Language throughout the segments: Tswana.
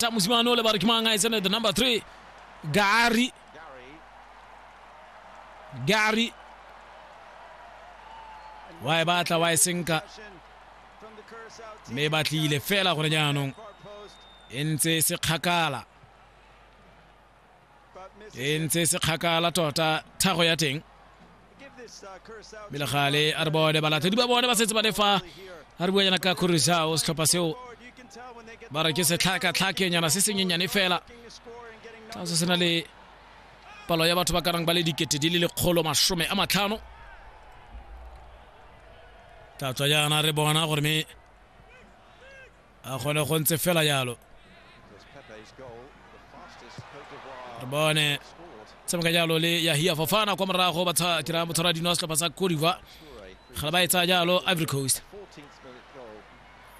tamu simano le ba re ke mang a e tsene the number three gary gary wa e batla wa e senka mme e batlile fela gore jaanong e ntse e se kgakala e ntse se kgakala tota thago ya teng melegale a re bone balatedi ba bone ba setse ba le fa a re bua yana ka corusao setlhopha seo ba re ke setlhakatlhakenyana se senyenyane fela tla se se na le palo ya batho ba karang ba le dikete di le lekgolo masome a matlhano tla tswa jaana re bona gore me a gone go ntse fela yalo re bone tshameka jalo le yahia fofana kwa morago ba dirang botshwara dino wa setlhopha sa codiva ga ba e tsaya jalo ivory coast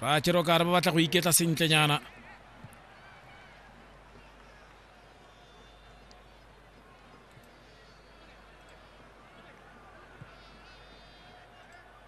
ba kere kare ba batla go iketla sentlenyana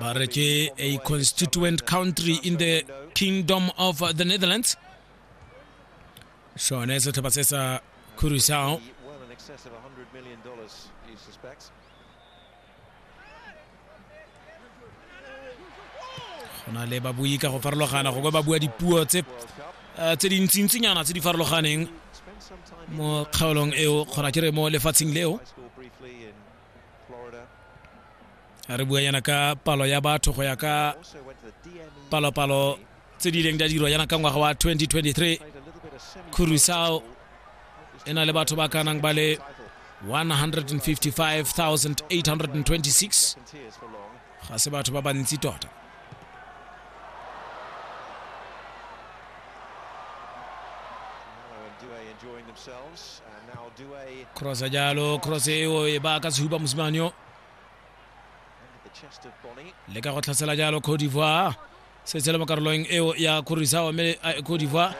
ba re ke a constituent country in the kingdom of the netherlands sone setlhopha se sa curacao go na le babui ka go farologana go ba bua dipuo tse eh, tse dintsintsinyana tse di farologaneng mo kgaolong eo kgona ke re mo lefatsheng leo re bua yana ka palo ya batho go ya ka palopalo tse di ileng di a dirwa jaana ka ngwaga wa 2023 curusao e na le batho ba ka nang ba le 155826 ga se batho ba bantsi tota crossa jalo cross eo e ba ka sehuba mosimane yo le ka go tlhasela jalo cote d'ivoire se tshela mo karolong eo ya khorisawa mme ko diva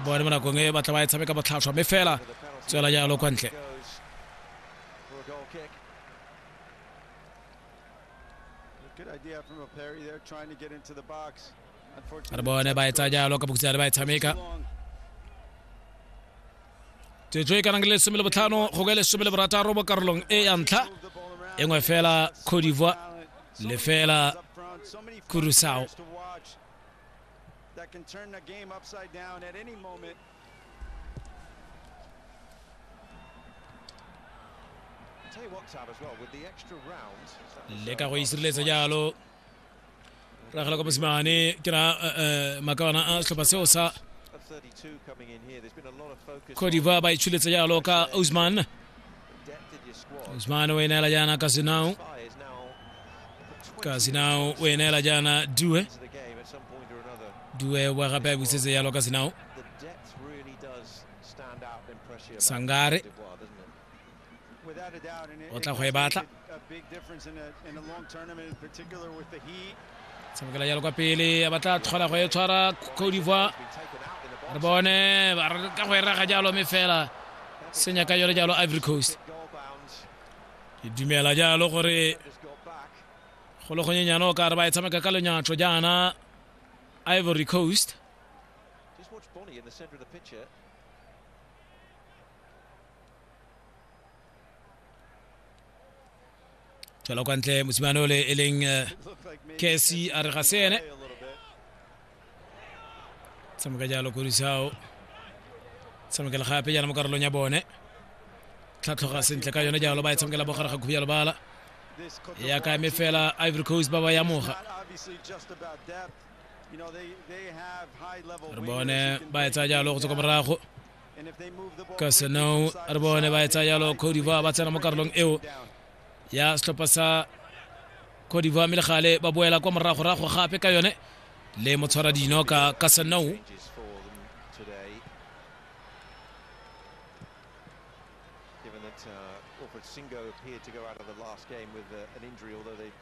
bone mo nakong e batla ba e tshameka botlhatlhwa mme fela tswela jalo kwa ntle re bone ba e tsaya jalo ka bokutsa le ba e tshameka tsetswe e kanang le lesome le botlhano go ka lesome le borataro mo karolong e ya ntlha e nngwe fela cote d'ivoire le fela kurusao le ka go isireletsa jalo ragela kwa mosimane ke ra eh, eh, makawana a setlhopha seo sa cote d'ivoire ba itshuletse jalo ka usman usman o e neela jaana ka senao ka senao o e neela jaana due due wa gape a busetse jalo ka senao sangare o tla go e batla tshamekela jalo kwa pele a batla tlhola go e tshwara cote d'ivoire re bone ka go e raga jalo mme fela senya ka yone jalo ivory coast ke dumela jalo gore go le gonyenyane o ka re ba e tshameka ka lenyatlo jaana ivory coast tswela kwa ntle mosimane ole e leng eh, kesi a re ga se ene tshameka jalo korisao tshamekela gape jalo mo karolong ya bone tlhatlhoga sentle ka yone jalo ba e tshamekela bogare ga khubi ya lebala ya ka eme fela ivory coast ba ba ya moga re bone ba e tsaya jalo go tswa kwa morago ka senong re bone ba etsa yalo codivoire ba tsena mo karolong eo ya setlhopha sa codivoire mme le gale ba boela kwa moragorago gape ka yone le motshwara dino ka ka senong Singo appeared to go out of the last game with uh, an injury, although they